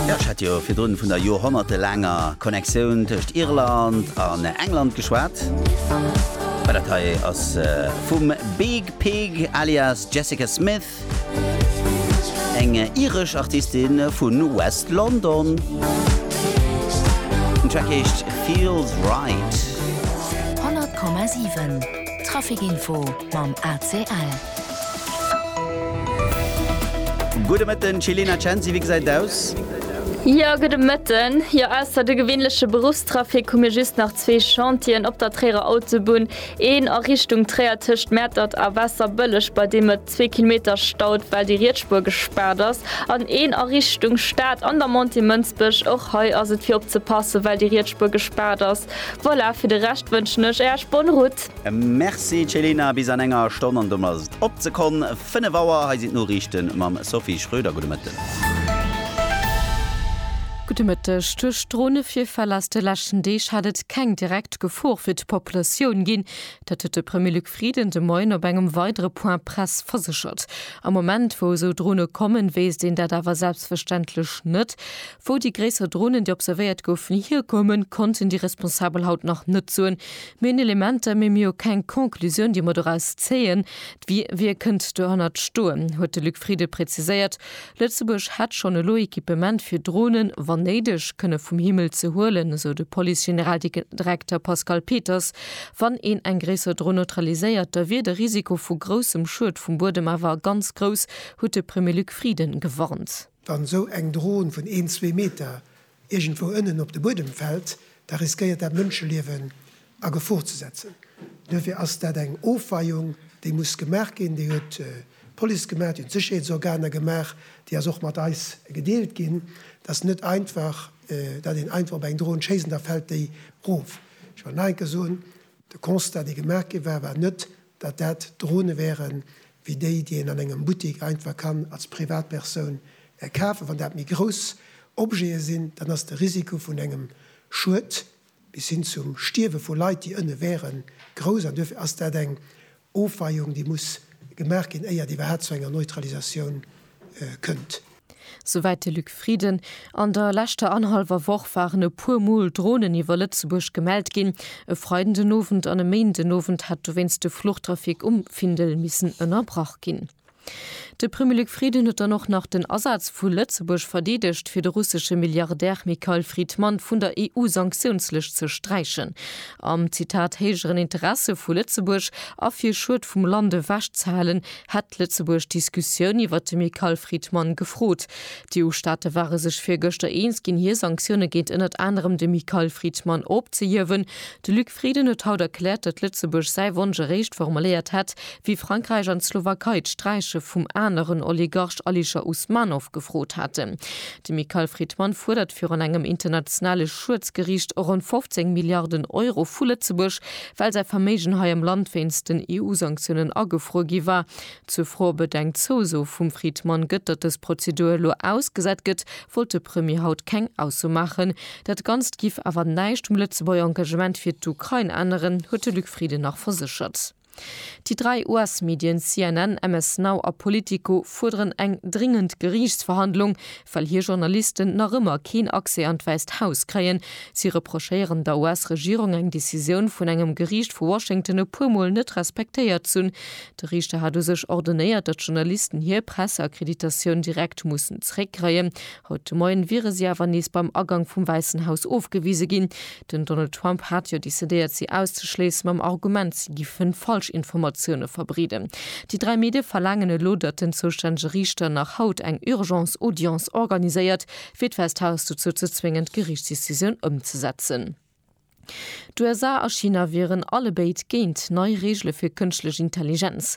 Jo, ech hat jo virdrun vun der joerhonnertelaanger Connectioun tëscht Irland an England geschwat. Mä dat hei ass vum Big Pig alias Jessica Smith, eng iresch Artistin vu West London. Den Track heescht Feels Right. 100,7 Traffic Info mam ACL. Gudde Mëtten Chilena Censi, wéi gesäit et aus? Jo, gudde Mëtten. Jo, ausser de gewinnleche Beruffstrafic hu mir just nach zwee Chantieren op der Tréierer Autobunn, een a Richtung Tréier tëscht Mäertert a Waasserbëlleg, bei deem et zwee Kilometer staut, well déi riets Spuer gespaart ass, an een a Richtung Stad an der Montée Mënsbech. Och hei ass et fir opzepassen, well déi riets Spuer gespaart ass. Voilà, fir de Rescht wënschen ech Äerch bonne route. Merci Céline, bis an enger Stonn an dunn ass et op ze konn 5 Auer. Hei sinn d'Noriichte mam Sophie Schröder. Gudde Mëtten. Gudde Mëtteg. Duerch Dronevirfäll aus de leschten Deeg hätt et keng direkt Gefor fir d'Populatioun ginn. Dat huet de Premier Luc Frieden de Moien op engem weidere Point Press verséchert. Am Moment, wou esou Drone kommen, wéisst een dat awer selbstverständlech net. Wou déi gréisser Dronen, déi observéiert goufen, hierkoumen, konnten déi Responsabel haut nach net soen. Mir hunn Elementer, mee mir hu keng Conclusioun, déi mer doraus zéien. D'Wie wie kënnt dohannert stoen, huet de Luc Frieden preziséiert. Lëtzebuerg hätt schonn elo Equipement, fir Dronen, wann néideg, kënne vum Himmel ze huelen, esou de Police-Generaldirekter Pascal Peters. Wann een eng gréisser Dron neutraliséiert, da wier de Risiko vu groussem Schued vum Buedem awer ganz grouss, huet de Premier Luc Frieden gewarnt. Wann esou eng Dron vun een, zwee Meter iergendwou ënnen op de Buedem fält, da riskéiert dat Mënscheliewen a Gefor ze setzen. Duerfir ass dat eng Ofweiung, déi muss gemaach ginn. Déi huet d'Police gemaach, déi hunn d'Sécherheetsorganer gemaach, déi ass och mat eis gedeelt ginn. Et ass net einfach, datt een einfach op eng Dron schéisst an da fält déi erof. Ech wëll nach eng Kéier soen, De Constat, dee gemaach gi war, war net, datt dat Drone wären, wéi déi, déi een an engem Buttik einfach kann als Privatpersoun kafen. Wann dat méi grouss Objete sinn, dann ass de Risiko vun engem Schued bis hin zum Stierwe vu Leit, déi ënne wären, grouss. An duerfir ass dat eng Ofweiung, déi muss gemaach ginn, éier et iwwerhaapt zu enger Neutralisatioun kënnt. Souwäit de Luc Frieden. An der leschter annerhallwer Woch waren e puer Mol Dronen iwwer Lëtzebuerg gemellt ginn. E Freiden den Owend an e Méinden den Owend hätt dowéinst de Fluchtrafic um Findel missen ënnerbrach ginn. De Premier Luc Frieden huet dann och nach den Asaz vu Lëtzebuerg verdeedegt, fir de russesche Milliardär Mikhail Fridman vun der EU-Sanktiounslëscht ze sträichen. Am, Zitat, héijeren Interesse vu Lëtzebuerg a fir Schued vum Land ewechzehalen, hätt Lëtzebuerg d'Diskussioun iwwert de Michael Friedman gefrot. D'EU-Staate ware sech virgëschter eens ginn, hir Sanktioune géint ënnert anerem de Michael Friedman opzehiewen. De Luc Frieden huet haut erkläert, datt Lëtzebuerg säi Wonsch eréischt formuléiert hätt, wéi Frankräich an d'Slowakei d'Sträiche vum aneren Oligarch Alisher Usmanov gefrot haten. De Michael Friedman fuerdert virun engem internationale Schuedsgeriicht ronn 15 Milliarden Euro vu Lëtzebuerg, well säi Verméigen hei am Land wéinst den EU-Sanktiounen agefruer gi war. Zur Fro, ob et eng Zouso vum Friedman gëtt, datt dës Prozedur elo ausgesat gëtt, wollt de Premier haut keng Ausso maachen. Dat Ganzt giff awer näischt um Lëtzebuerger Engagement fir d'Ukrain änneren, huet de Luc Frieden nach verséchert. Déi dräi US-Medien, CNN, MS Now a Politico, fuerderen eng dringend Geriichtsverhandlung, well hir Journalisten nach ëmmer keen Accès an d'Wäisst Haus kréien. Si reprochéieren der US-Regierung, eng Decisioun vun engem Geriicht vu Washington e puer Mol net respektéiert z'hunn. De Riichter hat u sech ordonéiert, datt d'Journalisten hir Presseakkreditatioun direkt mussen zeréckkréien. Haut de Moien wiere si awer nees beim Agank vum Wäissen Haus ofgewise ginn. Den Donald Trump hat jo decidéiert si auszeschléissen, mam Argument, si giffen Falschinformatioune verbreeden. Déi dräi Medie verlaangen elo, datt den zoustännege Riichter nach haut eng Urgence Audience organiséiert, fir d'Wäisst Haus dozou ze zwéngen, d'Geriichtsdecisioun ëmzesetzen. D'USA a China wieren allebéid géint nei Reegele fir Kënschtlech Intelligenz.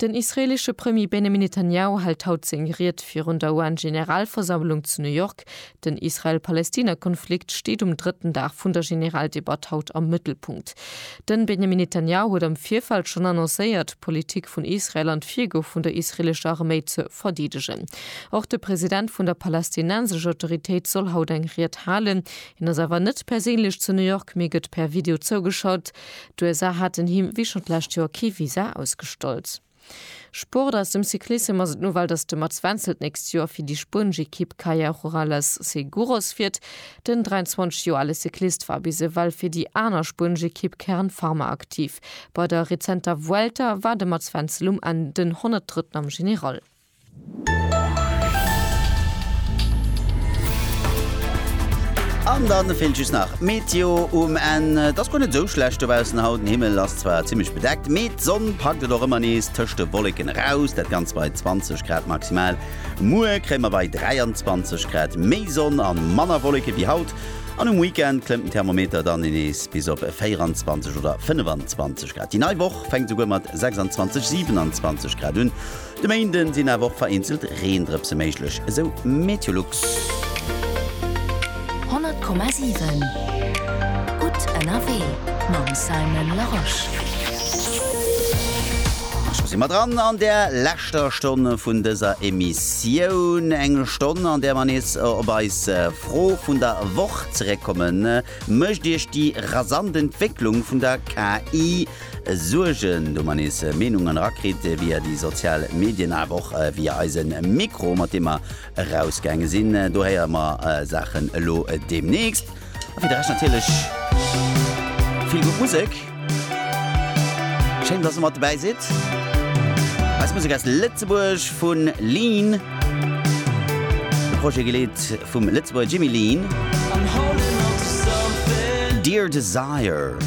Den israeelesche Premier Benjamin Netanjahu hält haut seng Ried virun der UN-Generalversammlung zu New York. Den Israel-Palestina-Konflikt steet um drëtten Dag vun der Generaldebatt haut am Mëttelpunkt. Den Benjamin Netanjahu huet am Virfeld schonn annoncéiert, d'Politik vun Israel an d'Virgoe vun der israeelescher Arméi ze verdeedegen. Och de President vun der Palästinensescher Autoritéit soll haut eng Ried halen. Hien ass awer net perséinlech zu New York, mee gëtt per Video zougeschalt. D'USA haten him, wéi schonn d'lescht Joer, kee Visa ausgestallt. Sport Aus dem Cyclissem ass et d'Nouvelle, datt de Mats Wenzel d'nächst Joer fir déi spuenesch Ekipp Kaja Rurales Seguros fiert. Den 23 Joer ale Cyclist war bis ewell fir déi aner spuenesch Ekipp Kern Pharma aktiv. Bei der rezenter Vuelta war de Mats Wenzel um Enn den 103. am General. An dann fehlt just nach Meteo um Enn. Et ass guer net esou schlecht dobaussen haut, den Himmel ass zwar zimmlech bedeckt, mee d'Sonn packt et och ëmmer nees tëscht de Wolleken eraus, dat Ganzt bei 20 Grad maximal. Muer kréie mer bei 23 Grad méi Sonn a manner Wolleke wéi haut an um Weekend klëmmt den Thermometer dann nees bis op 24 oder 25 Grad. Déi nei Woch fänkt souguer mat 26, 27 Grad un. De Méinden sinn awer och vereenzelt Reendrëpse méiglech, esou Meteolux. 100,7 gutt ënnerwee mam Simon Larosche. A scho si mer dran an der leschter Stonn vun dëser Emissioun. Eng Stonn, an där mer nees op eis Fro vun der Woch zeréckkommen, Mécht Iech déi rasant Entwécklung vun der KI Suergen, do mer nees Meenungen erakritt via déi sozial Medien, awer och via eise Mikro, mat deem mer erausgaange sinn. Do héiere mer Saachen elo deemnächst. A fir de Rescht natierlech vill gutt Musek. Schéin, dass der mat dobäi sidd. Eis Musek aus Lëtzebuerg vu Lean, de Projet geleet vum Lëtzebuerger Jimmy Lean. Dear Desire.